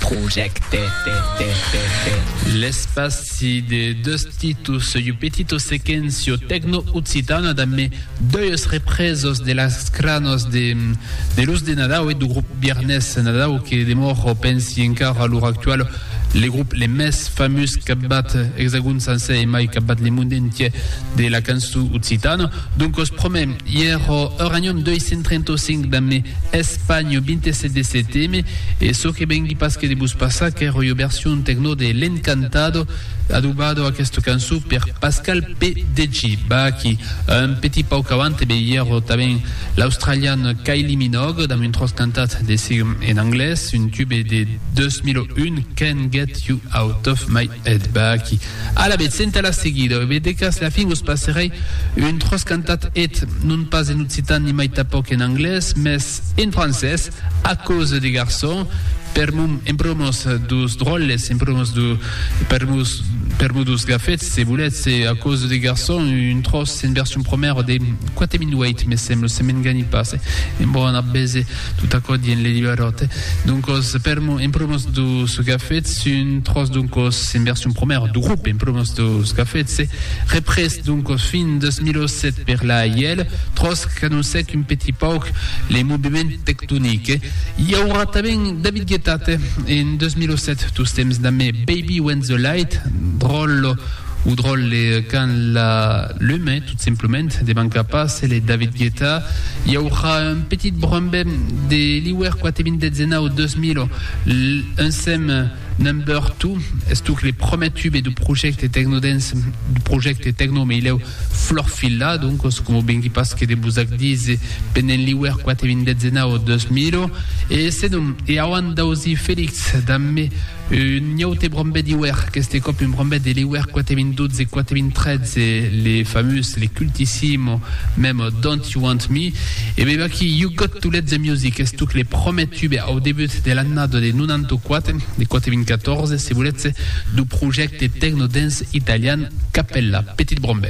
Projècte. L'espaci de deus titus Soi Petito Sequencio Tecno Occitana damb deus reprèsos de las cranos de luz de Nadau e du grup Viernes Nadau que demòro, pensi encara a l'ora actuala, le grup le mès famús qu'abat Exagon sancèr e mai qu'abat le monde entièr de la cançon occitana. Doncos promèm ièro Uranium 235 damb Espanho 27 de seteme e çò que vengui pas que de vos passar qu'èro ua version tecno de L'Encantado adobado aquesta cançon per Pascal P. DJ Baaki un petit pauc avant ebe ièro tanben l'australian Kylie Minogue damb un tròç cantat de si en anglés un tube de 2001 Can't Get You Out Of My Head Baaki Alavetz, senta la seguida, ve de cas la fin vos passerèi un tròç cantat eth, non pas en occitan ni mai tanpòc en anglés, mès en francés, a causa de garçon, per mon, en promòs dus dròlles, en promòs du, per mos, per mos dus gafets, se voletz, e a causa de garçon, un tròç en version promèra de quate minuèit, me sembla, se m'engani pas, en bona bese. Tot aquò dient le librarote. Doncos, per mo, en promos dus gafets, sun tros doncos en version promèra du grop, en promos dus gafets, se représ doncos fin 2007 per la AIL, tros qu'anossèc un petit pauc le moviment tectonic. I aurà tanben David Guetta, te, en 2007, tostemps damb Baby When the Light, dròl, O dròlle quand la lume, tot simplement, de manca pas, e le David Guetta i aurà un petit brombe de l'iuèr quate vint de zenau 2000, l'unsem Number Two, estuc le promè tube du projècte tecnodance, du projècte tecno me hilèu Florfilla, doncos coma vengui pas que de vos ac díser, pendent l'iuèr quate vint de zenau 2000, e senon, e auant d'ausir Felix damb me Un aute brombet d'iuèr, qu'este còp un brombet de l'iuèr 4012, 4013, le famós, le cultissimo, mem Don't You Want Me, e mem aquí You Got To Let The Music estuc le promèr tube au debut de l'annada de 94, de 94, se volètz, du projècte tecno-dance italian Cappella, Petit Brombet.